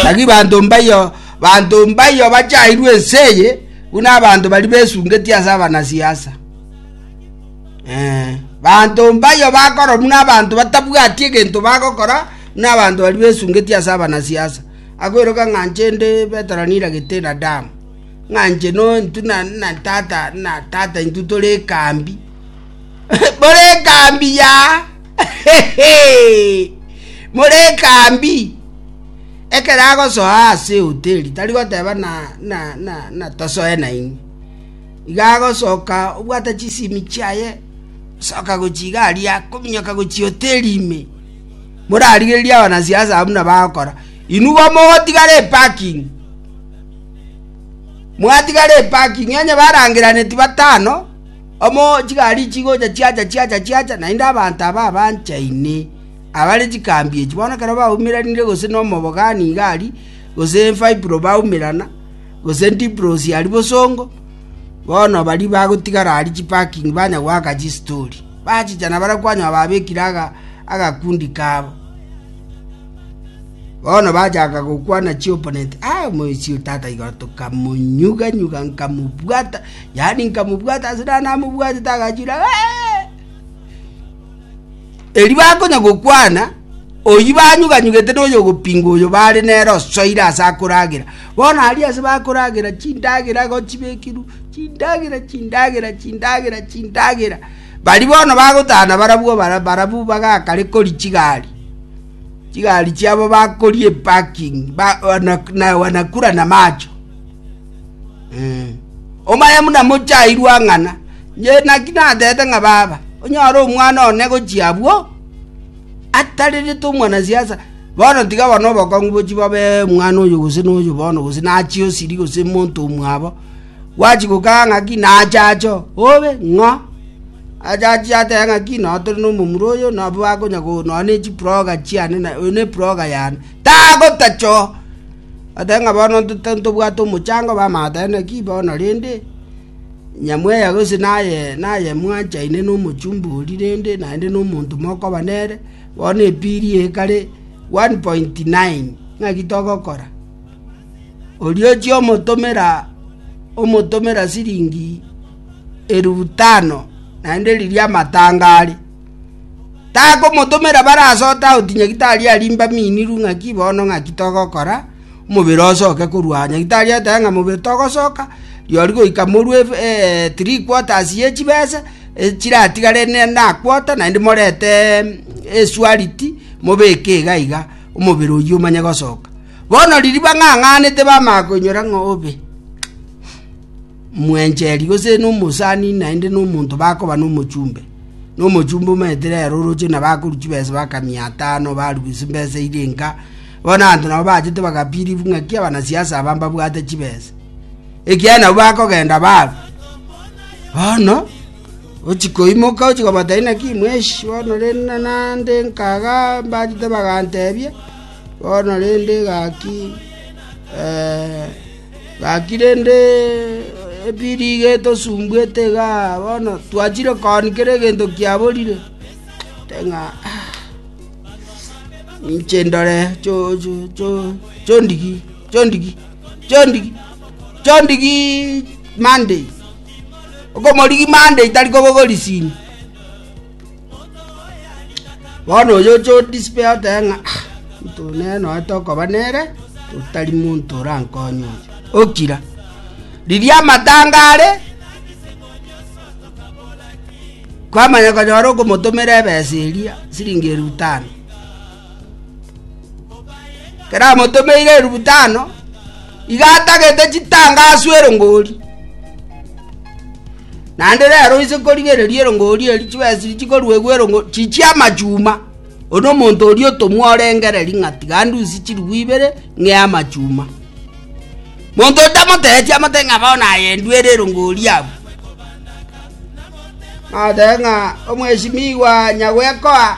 Tagi banto mbayo, banto mbayo bachairwe ense eye, buna abanto bari besungetie ase abanasiasa. Eh, banto mbayo bakoro buna abanto batabwati egento bagokora, buna abanto bari besungetie ase abanasiasa. Akoiroka ng'a inche nde Petero niragete na damu, ng'a inche no intu na na tata na tata intwe tore ekambi, bore ekambi yaaa. morekambi ekero agosoa ase hoteri tari goteba na na na na tosoe nainwe iga agosoka obwate chisimi chiaye soka gochi iga aria kominyoka gochi hoteri ime morarigereria abanasiasa abwo buna bagokora inwe igo mogotigara eparking mwatigara eparking onye barangeraneti batano. Amo chigari chigocha chiacha chiacha chiacha, naende abanto aba abanchaine abare chikambi echi, bono ekero baumeranire gose nomobogani iga aria, gose Fibro baumerana, gose Dibrosi aria bosongo, bono baria bagotigara aria chiparking banya goaka chistori. Bachicha na baria kwanywa babekire agakundi kabo. Bono bachaka gokwana chiopponent, Aye omoisio tata igoro, tokamonyuga nyuga nkamobwata. yaani nkamobwata ase naye namobwatete agachira eri bakonya gokwana oyi banyuganyugete noyo ogopinga oyo bare nere osoire ase akoragera bono ari ase bakoragera chindagera igo chibekiru chindagera chindagera chindagera chindagera bari bono bagotana barabwo barabwo bagakare kori chigari chigari chiabo bakorie eparking ba wana nakura na macho. Omanye buna mochairwe ang'ana. Inche naki natebete ng'a baba, onyore omwana one gochia abwo, atarerete omwanasiasa, bono tiga bono obokong'u bochia bobe omwana oyo gose noyo bono gose nachie osiri gose monto omwabo, gwachi gokaa ng'aki nache ache oo, obe ng'o? Ache achie atebe ng'aki noo tore na omomura oyo nabo akonya go nonye na echiproga chiane na oyo na eproga yane, tagotacha oo. Ata ng'a bono tintobwati omochando obe amato aye, naki bono rende, nyamweya gose naye naye mwanchaine nomochumba oria rende naende nomonto mokoba nere, bono epiri eye ekare one point nine. Naki togokora? Oria ochia omotomera omotomera siringi elufu tano, naende riria amatanga are. Takomotomera bare ase otaoti onye tari arimbe aminiru ng'aki bono ng'aki togokora, omobere osoke korwa. Onye tari ateba ng'a mobere togosoka, rirorio goika morue three quarters ye chibesa, chiratigare na quarter naende morete esualiti mobeke iga iga omobere oywo omanye gosoka. Bono riria bang'ang'anete bamanya koinyora ng'a obe, mwencheri gose na omosani naende na omonto bakoba na omochumbe. Nomochumba omaete rero oroche na bakoru chibesa baka mia atano barubu chimbesa iria inka. Bono abanto nabo bachete bagapirivu ng'aki abanasiasa aba mbabwate chibesa. Ekiagera nabo bakogenda baru. Bono ochi koimoka ochi kobatari naki mweshi bono rende nande nkaga mbachete bagantebia bono rende gaki eh, “Gaki rende, ebiriga etosumbuete iga bono twachire kooni kera egento kiaborire, korende ng'a ninche ndore chondigi, chondigi, chondigi, chondigi Monday, okomorigi Monday tari kobogorisia ime. Bono oyo Jodi Spear otebe ng'a, “Omonto nere noete okoba nere, otari monto orankonye oyo. Okira, riria amatanga are, kwamanya konyora okomotomera ebesa eria siringi eribu tano. keramotomeire erubu tano iga atagete chitanga aswe erongori naende rero oise korigereria erongori eri chibesiri chikoruegwa erongori chichie amachuma one omonto oria otomwa orengere ng'a tiga ndusie chiribu ibere ng'ee amachuma monto otamoteeti amote ng'a bono aye ndwere erongori abwo natebe ng'a omweshimiwa nyagoekoa.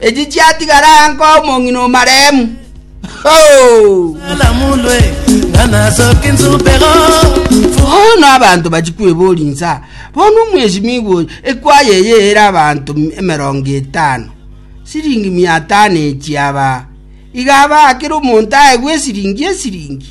Echi chiatigara aya nkoa omong'ina o maremu. Bono abanto bachia kweboria inse, Bono omwesimigwa oyo, ekwaya eye ere abanto emerongo etano, siringi mia tano echi abaa, iga abaa kera omonto aegwe esiringi esiringi?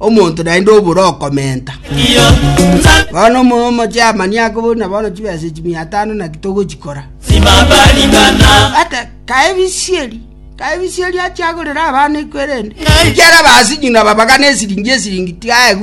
Omonto naende obore okomenta. Bono omo- omochairman ake buna bono chibesa echi mia tano naki togochikora ate kaebisieri kaebisieri achiagorera abana ekwerende ekiara abasinyuna babagana esiringi esiringi tigaegu